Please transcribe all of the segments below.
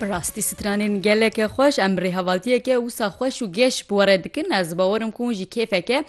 Bi rastî stranên geleke xweş em rêhevaltiyeke wisa xweş û geş bi were dikin ez bawerim ku hûn jî kêfeke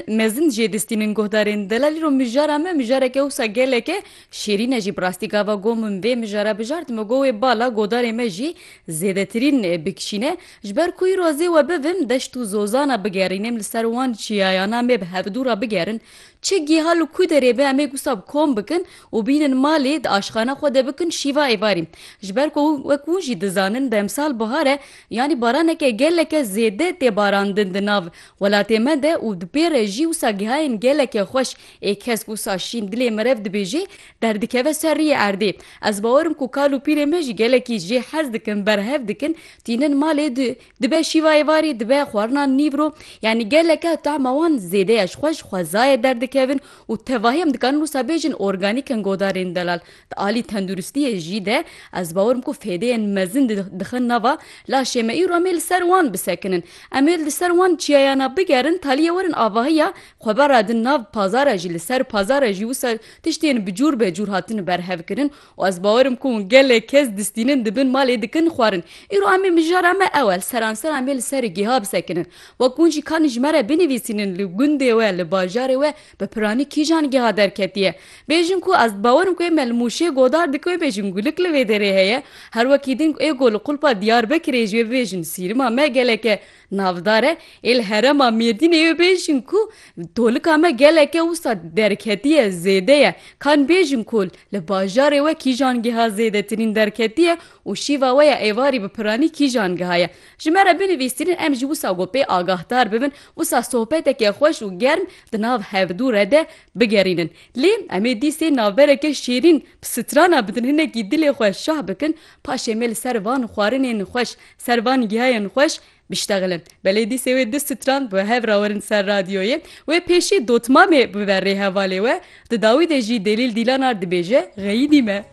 mezin jê distînin guhdarên delalî ro mijara me mijareke wisa geleke şêrîne jî bi rastî gava got min vê mijara bijart me got wê bala godarê me jî zêdetirîn bikişîne ji ber ku îro zê we bivim deşt û zozana bigerînim li ser wan çiyayana me bi hevdû re bigerin Çi giha li ku derê be em ê gusa bi kom bikin û bînin malê di aşxana xwe de bikin şîva êvarî. Ji ber ku wek hûn jî dizanin bi emsal bihar e yanî baraneke geleke zêde tê barandin di nav welatê me de û di pê re jî wisa gihayên geleke xweş ê kesk wisa şîn dilê merev dibêjê derdikeve ser riyê erdê ez bawer im ku kal û pîrê me jî gelekî jê hez dikin berhev dikin tînin malê di Dibe şîva êvarê, dibe xwarina nîvro, yanî geleke tahma wan zêde ya ji xwe ji xwezayê derdikevin û tevahî em dikarin wisa bêjin organîk in godarên delal. Di alî tenduristiyê jî de ez bawer im ku fêdeyên mezin di dixin nava laşê me îro em ê li ser wan bisekinin. Em ê li ser wan çiyayana bigerin talîye werin avahiya xwe bera din nav pazara jî li ser pazara jî wisa tiştên bi cûr be cûr hatin berhevkirin Û ez bawer im ku hûn gelek kes distînin dibin malê dikin xwarin. Îro em ê mijara me ewel seranser em ê li serê gêha bisekinin. Wek hûn jî kanî ji me re binivîsînin li gundê we, li bajarê we bi piranî kîjan gêha derketiye. Bêjin ku ez dibawer im ku ê me li Mûşê godar dikin wê bêjin gulik li vê derê heye. Her wekî din ku ê go li qulpa Diyarbekirê jî wê bibêjin sîrima me gelek e. Navdare ê li herêma Mêrdînê yo bêjin ku tolika me geleke wisa derketiye zêde ye. Ka nibêjin ku li bajarê we kîjan geha zêdetirîn derketiye û şîva we ya êvarî bi piranî kîjan geha ye. Ji me re binivîsînin em jî wisa ku pê agahdar bibin wisa sohbeteke xweş û germ di nav hevdû re de bigerînin. Lê em ê dîsê navbereke şêrîn bi strana bidin hinekî dilê xwe şah bikin paşê me li ser van xwarinên xweş Ser van gihayên xweş biştexilin. Belê dîsê wê du strand bi hev rawerin ser radyoyê. Wê pêşî dotmamê bibe rê hevalê we. Di dawî de jî Delîl Dîlanar dibêje, Xeyîdî me.